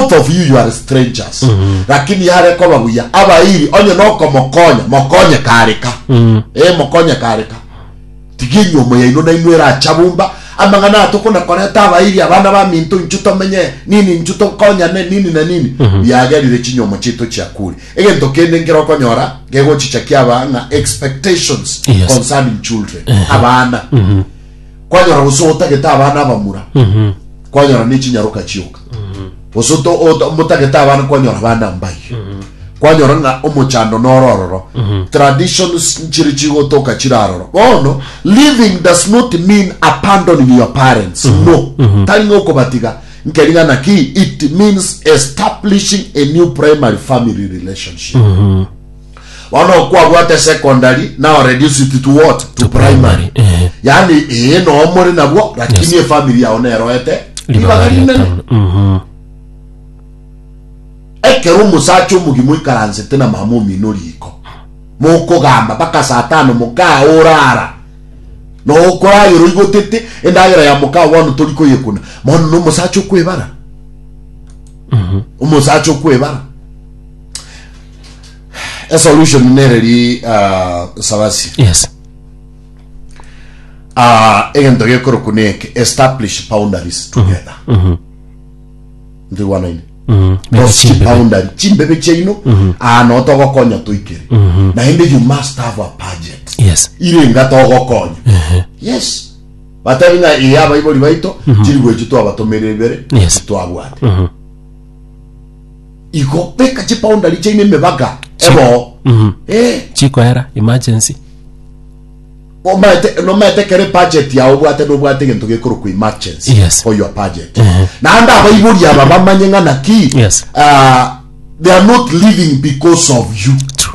Both of you you are strangers lakini yare koba buya abairi onye nokomokonya mokonye kareka eh mokonye kareka tiga enyomo yaino naino eracha bumba amang'ana aya tokona koreta abairi abana baminto inchu tomenye nini inchu tokonyane nini na nini biagerire chinyomo chiaito chiakure egento kende nkere okonyora gegochichakia abang'a expectations Yes. concerning children abana kwanyora gose otagete abana abamura Mhm. kwanyora nechinyaroka chioka gose oto- oto- motagete abana kwanyora abana mbai kwanyora ng'a omochando noro ororo traditions nchiri chigotoka chiri aroro bono living does not mean abandoning your parents no tari ng'a okobatiga nkeri ng'a naki it means establishing a new primary family relationship Bono okwabwate secondary now reduced to what? To, To primary. primary, eh. Yaani ee noo more nabwo lakini Yes. efamily yao neroete ribaga rinene. Mhm. Ekero omosacha omogima oikaransete na mama omino riko mokogamba mpaka saa tano mokaa orara noo okoragera oigotete endagera ya mokaa bono tori koyekuna bono na omosacha okwebara omosacha okwebara A solution nere ri ah, Sabasi. Yes. Ah, egento gekorokwa neke establish boundaries together. Ndigwanaine. Mhm. Mega Those chimbe. boundary chimbebe chiaino ah, no togokonya toikere naende you must have a budget Yes. irenga togokonya yes batari ng'a eye abaibori baito chiri gwechi twabatomerera ibere Yes. twabwate igo beka chipoundari chiaino emebaga eboo Mhm. Eh, chikoera emergency omaete- nomaete kere budget yao obwate nobwate egento gekorokwa emergency Yes. for your budget Ehe. naende abaibori aba bamanye ng'a naki Yes. ah, they are not living because of you True.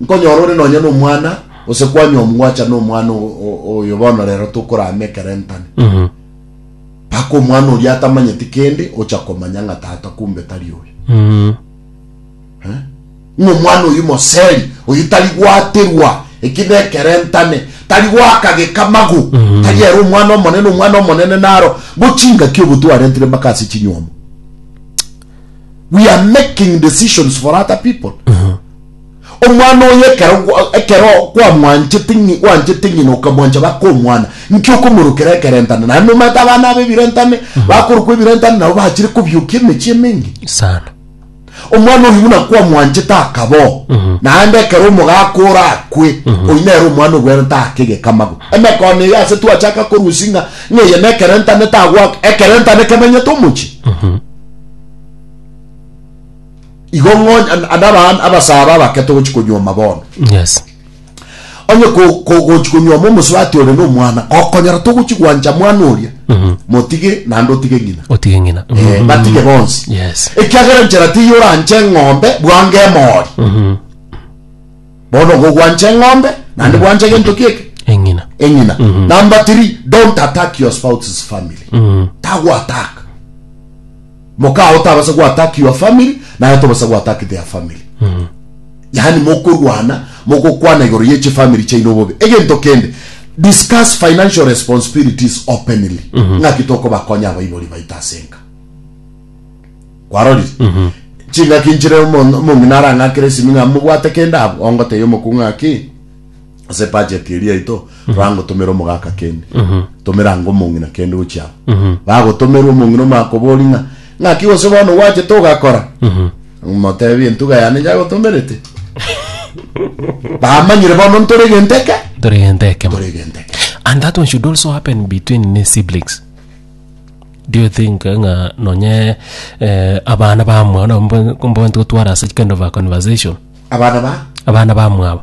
Nkonyora ore nonya nomwana, gose kwanywa omgwacha nomwana o- o- oyo bono rero tokorama ekerentane. Mpaka omwana oria atamanyeti kende ocha komanya ng'a tata kumbe tari oyo. Eh? Ng'a omwana oyo moseri, oyo tari gwaterwa, eki nekerentane, tari goaka gekamagu, tari ere omwana omonene, omwana omonene naro bo chingaki obo twarentire mpaka ase chinywomo. We are making decisions for other people. Omwana oye ekero ekero kwamwanchete ng'i wanchete ng'ina okamwancha baka omwana, inki okomorokera ekerentane? Naende omanyete abana aba ebirentane, bakorokwa ebirentane nabo bachire kobiokia emechie emenge. Sana. Omwana oyo buna kwamwanchete akaboo, naende ekero omogaka ore akwe, oyio nere omwana obwenerete ake egekamago. Emekone eye ase twachaka korusia ng'a ng'a eye nekerentane tagwaka, ekerentane kemenyete omochie. igo ng'onye an- ande abana abasaba abake togochi konyuoma bono Yes. onye ko- ko- gochi konyuoma omosubati ore na omwana gokonyora togochi gwancha mwana oria motige naende otige ng'ina Otige ng'ina. Eh, batige bonsi Yes. ekiagera nchera tiyo oranche eng'ombe bwange emori bono gogwancha eng'ombe naende bwanche gento kieke Eng'ina. eng'ina number three don't attack your spouse's family tagwataka Mokaa otabasa go attack your family naye tobasa go attack their family. Yaani mokorwana mogokwana igoro ye chi family chaino bobe. Egento kende discuss financial responsibilities openly. Ng'aki tokobakonya abaibori baito ase enka. Kwarorire? Chingaki nchire omo- omong'ina arang'akere esimi ng'a mobwate kende abwo. Ongotebia omokungu ng'aki ase ebudget eria yaito torangotomera omogaka kende tomera anga omong'ina kende gochia amo bagotomerwa omong'ina omakobori ng'a ng'aki gose bono gwachete ogakora omotebi entuga yane yagotomerete bamanyire bono ntore egento eke tore egento ekemo tore egento eke and that one should also happen between ne siblings do you think eh, ng'a nonye eh, abana bamwao nabo mbo- mboanti gotwara ase kind of a conversation abana ba abana bamwabo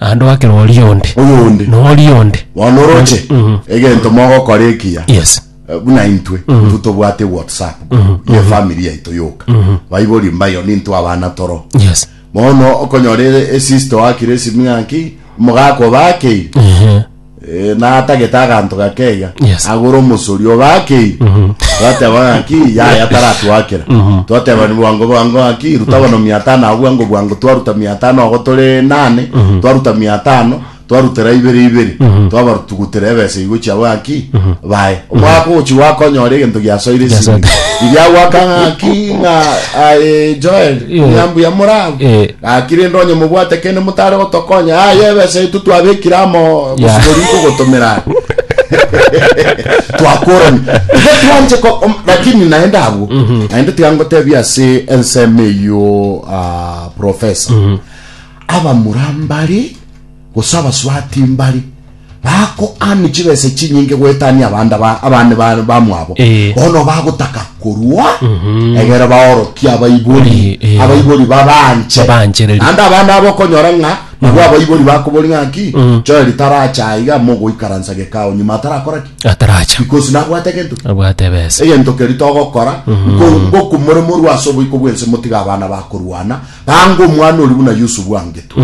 Naende oakera oria onde. Oyo onde. Na oria onde. Bono oroche Mhm. egento mogokora ekiya Yes. eh, buna intwe intwe tobwate whatsapp ye family yaito yoka baibori mbayo nintwe abana toro Yes. bono okonyora e- esister wakire esimi ng'aki omogaka obakeire Ehe. Ee, na atagete aganto gakeiga, Yes. agore omosori ogakeire. Mhm. Twateba ng'aki, yaya taratwakera. Mhm. Twateba ni bwango bwango ng'aki, ruta bono mia tano agwo bwango bwango. Twaruta mia tano agwo tore nane, Mhm. twaruta mia tano, twarutera ibere ibere. Mhm. Twabarutugutera ebesa igo chiabo ng'aki, Mhm. bae. Omwaka ogochi gwakonyora egento giasoire ase Giasoire. ebibe. Riria gwaka ng'aki, ng'a, aye Joel, Ye. ng'a mbuya morabwo. Eh. Gaki rende onye mobwate kende motare gotokonya, aye ebesa yaito twabekire amo gosibori nkogotomera are. Twakorani. Igo twanche ko om- lakini naende abwo. Naende tiga ngotebia ase ensemo eyio ah, professor. Abamura mbare Gose abasubati mbare bakoania chibesa chinyinge goetania abande ba- abande ba- bamwabo, Eh. bono bagotaka korua egere baorokie abaibori, Eh, eh. abaibori babanche. Babanchereri. Naende abande abo okonyora ng'a nabwo abaibori bakobori ng'aki, Joeli taracha aiga mogoikaransa gekao nyuma atarakora ki? ataracha Because nabwate gento ki? abwate ebesa egento keri togokora ngoku more morwa ase oboiko bwense motiga abana bakorwana bange omwana ori buna yusufu angetwe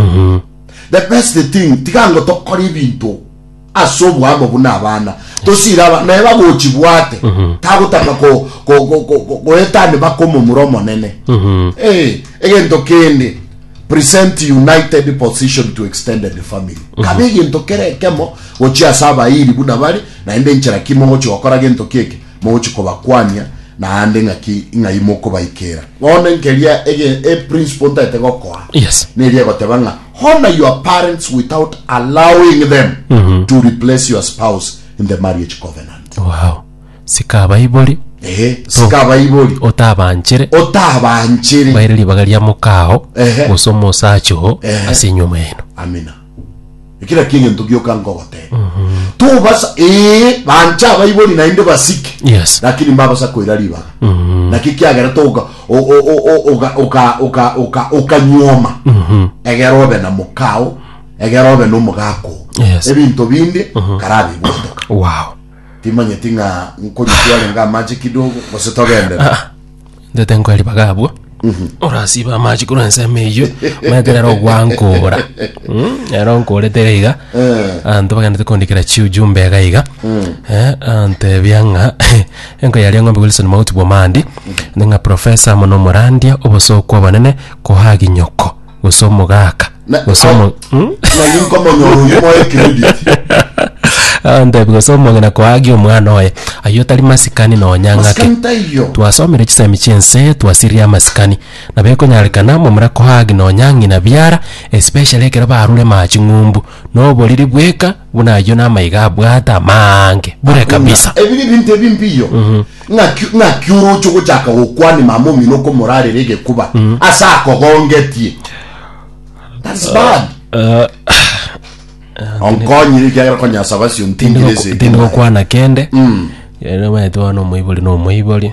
The best thing tiga ngo tokore ebinto ase oboamo buna abana tosire abana naye bagochibwate mhm. tagotaka goetani baka omomura omonene mhm. eh, egento kende present united position to extended family mhm. kabe egento kere ekemo gochia ase abairi buna bari naende enchera kimo gochi gokora gento keke Mogochia kobakwania naende ng'aki ng'ai mokobaikera. Bono nkeria ege e principle ntaete gokoa Yes. neri egoteba ng'a honor your parents without allowing them to replace your spouse in the marriage covenant. Wow. Sika abaibori Ehe, sika abaibori otabanchere otabanchere. baire ribaga ria mokao Ehe. gose omosacha oo Ehe. ase enyomba yaino. Amina. Ekera kiegento gioka nkogoteba. Tobasa ee bancha abaibori naende basike. Yes. Lakini mbabasa koira ribaga. Mm. Naki kiagera toka oka oka oka oka oka nyoma. Mhm. Egera obe na mokao, egera obe no mogako. Yes. Ebinto binde mhm. karabi botoka. Wow. Timanye tinga nkonyi tuare nga amache kidogo, bose togendera. Ah. ndete nkoe ribaga abwo orasiba amache korwa ensemo eyio maeterero ogwankora Mm, ero nkorete iga iga anto bagenderete kondikera chiujumbe iga iga Eh, antebia ng'a enko yaria eng'ombe wilson mauti bwomandi ning'a profesa mono morandia obosokwa obonene kohagi nyoko gose omogaka Na- gose omo- Hmm? nari nkomonyora oyo moe credit andebi gose omong'ina koagi omwana oye aye otari masikani nonya ng'ake masikani taiyo twasomire chisemi chiense twasirire amasikani nabo ekonyarekana momura koagi nonya ng'ina biara especially ekero barure maa ching'umbu noboriri bweka Buna ayio namaiga abwate amaange bure kabisa. Buna ebi nebinto ebi mbiyo, ng'aki ng'aki oroche ogochaka gokwania mama omino okomorarera egekuba ase akogongetie? That's bad. Onkonyire ekiagera konyasaba ase ontingire ase Tindi ekemo yaye. gokwana kende. Ere omanyete bono omoibori na omoibori.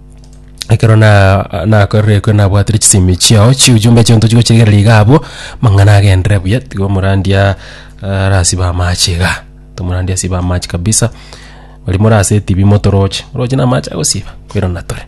ekero na nakorerekwe nabwatire chisemi chiao chiujumbe chionto chigochiregereria iga abwo mang'ana agenderere buya tiga omorandia ah, arasibe amache iga tomorandia asibe amache kabisa baria more ase etibi motoroche oroche na amache agosiba koirana tore